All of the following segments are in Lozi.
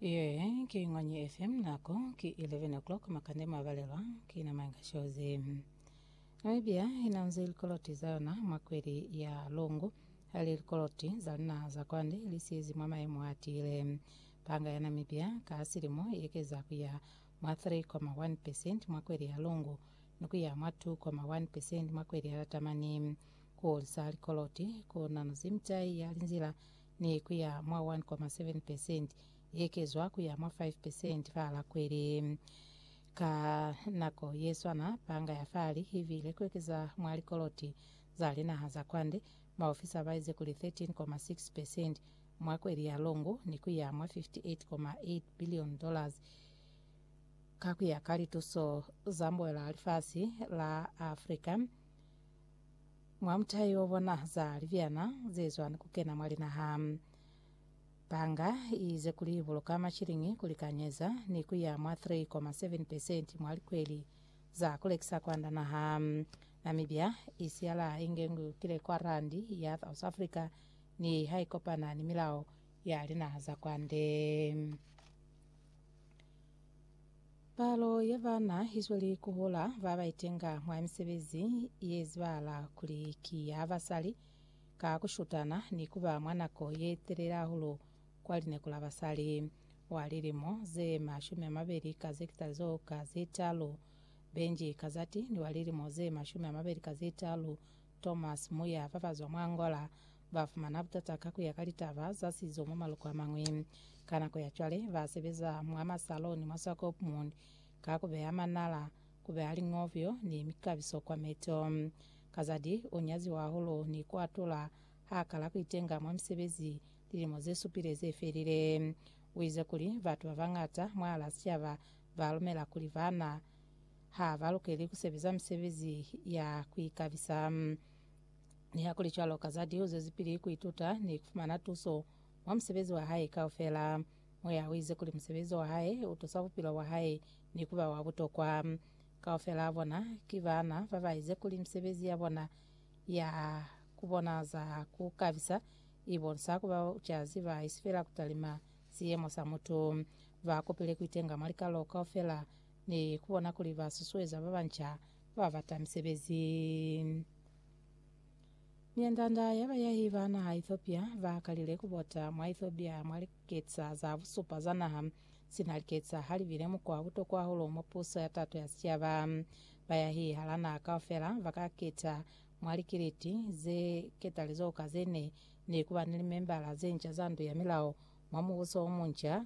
Ye ki Ngwanyi FM nako ki 11 o'clock makande mabalelwa ki na manga shozi. Namibia ina nzi likoloti za yona mwa kweli ya lungu hali likoloti za lina za kwande li siezi mwa maemo a tiile. Panga ya Namibia ka silimo yekeza kuya mwa 3,1% mwa kweli ya lungu ni kuya mwa 2,1% mwa kweli ya latamani. Kuhulisa likoloti ku nanuzi mitai ya linzila ne ku ya mwa 1.7 percent, i ekezwa ku ya mwa 5 percent fa la kweli. Ka nako ye swana, Panga ya Fali i viile ku ekeza mwa likoloti za linaha za kwande, maofisa ba ize kuli 13.6 percent mwa kweli ya longu ni ku ya mwa 58.8 billion dollars ka ku ya ka lituso za mboela lifasi la Africa. Mwa mutayi wo bona za libyana ze zwa ni ku kena mwa linaha. Banga i ize kuli i buluka mashiliñi ku likanyeza ni ku ya mwa 3.7 pesenti mwa likweli za ku lekisa kwanda naha. Namibia i siyala inge ngu kile kwa randi ya South Africa niha i kopana ni milao ya linaha za kwande. Palo ya bana i zweli ku hola ba ba itenga mwa misebezi ye zibahala kuli ki ya basali ka ku shutana ni ku ba mwa nako ye telele hahulu kwa lineko la basali. Wa lilimo ze mashumi a mabeli ka ze kitalizo ka ze talu, Benji Kazati, ni wa lilimo ze mashumi a mabeli ka ze talu, Thomas Muya fa bazwa mwa Angola ba fumana butata ka kuya ka litaba za sizo mwa maluko a mañwi. Ka nako ya cwale ba sebeza mwa masaloni mwa Swakopmund ka ku beya manala, ku beya liñovyo ni mikabiso kwa meto. Kazadi u nyaziwa hahulu ni ku atula ha kala ku itenga mwa misebezi lilimo ze supile ze felile. U ize kuli, Batu ba bañata mwahal'a sicaba ba lumela kuli bana. ha ba lukeli ku sebeza misebezi ya ku ikabisa. Nihakulicwalo, ka za liuzo ze pili ku ituta ni ku fumana tuso mwa musebezi wa hae kaufela. Moya u ize kuli musebezi wa hae u tusa bupilo bwa hae ni ku ba wa butokwa. Kaufela bona ki baana ba ba ize kuli misebezi ya bona ya ku bona za ku kabisa i bonisa ku ba babucazi ba isi fela ku talima siyemo sa mutu. Ba kopile ku itenga mwa likalo kaufela ni ku bona kuli ba susueza ba banca ku babata misebezi. Mianda-nda ya bayahi ba naha Ethiopia ba kalile ku bota mwa Ethiopia mwa liketsa za busupa za naha, sina liketsa ha li bile mukwa wa butokwa hahulu mwa puso ya tato ya sicaba. Bayahi hala naha kaufela ba ka keta mwa likiliti ze ketalizoho ka ze ne ni ku ba ni limembala ze nca za ndu ya milao mwa mubuso o munca,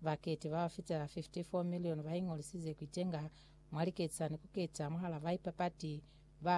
Baketi ba ba fitela 54 milioni ba ingolisize ku itenga mwa liketani ku keta mwahal'a baipapati ba